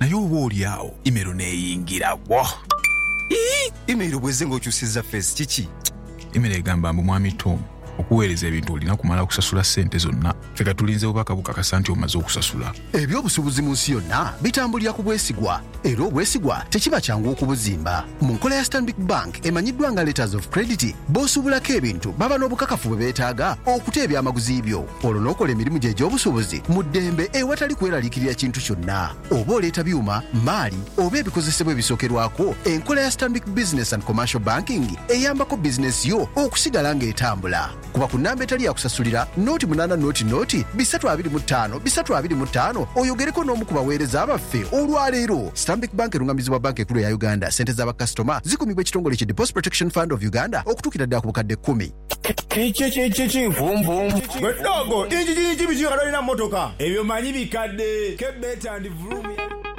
Naye oba oli agho email neyingira bwo. Iyii email bweze nga okyusiza face kiki? Email egamba mbu Mwami Tom okuweereza ebintu olina kumala kusasula ssente zonna. Ffe katulinze bubaka bukakasa nti omaze okusasula. Eby'obusubuzi mu nsi yonna bitambulira ku bwesigwa era obwesigwa tekiba kyangu okubuzimba. Mu nkola ya Stanbic Bank emanyiddwa nga Letters of Credit, b'osuubulako ebintu baba n'obukakafu bwe beetaaga okuta ebyamaguzi byo, olwo n'okola emirimu gyo egy'obusuubuzi mu ddembe ewatali kweraliikirira kintu kyonna. Oba oleeta byuma, mmaali oba ebikozesebwa ebisookerwako, enkola ya Stanbic Business and Commercial Banking eyambako bizinensi yo okusigala ng'etambula. Kuba ku namba etali ya kusasulira, noti munaana noti noti bisatu abiri mu taano bisatu abiri mu taano oyogereko n'omu ku bagheereza baffe olwa leero. Stanbic Bank erung'amizibwa Banka Enkulu eya Uganda. Ssente za bakasitoma zikumibwa ekitongole ki Deposit Protection Fund of Uganda okutuukira ddala ku bukadde kkumi. Kiki kiki nvunvunvu? Gwe ddogo, injiji injibizi yona lwolina mu motoka? Ebyo manyi bikadde. Ke better and vroom ya.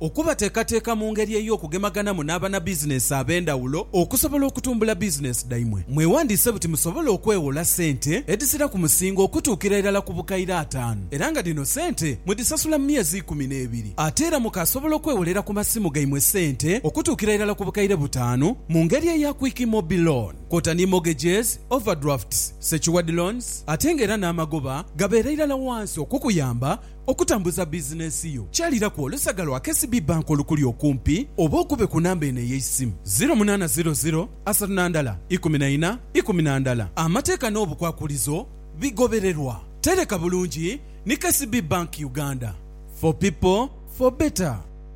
Okubateekateeka mu ngeri ey'okugemaganamu n'abanabizineesi ab'endhawulo okusobola okutumbula bizineesi dhaimwe. Mwewandiise buti musobole okwewola sente edhisira ku musingo okutuukira irala ku bukaire ataanu era nga dhino sente mudhisasula mu myezi ikumi n'ebiri. Ate era mukaasobola okwewolera ku masimu gaimwe sente okutuukira irala ku bukaire butaanu mu ngeri eya Quick Mobi Loan kwota ni mortgages, overdrafts, secured loans ate nga era n'amagoba gabeera irala wansi okukuyamba Okutambuza bizinensi yo kyaliraku olusaga lwa KCB Bank olukuli okumpi oba okube ku namba eno ey'eisimu, ziro munaana ziro ziro asatu na ndala ikumi na ina ikumi na ndala. Amateeka n'obukwakulizo bigobererwa. Tereka bulungi ni KCB Bank Uganda. For people, for better.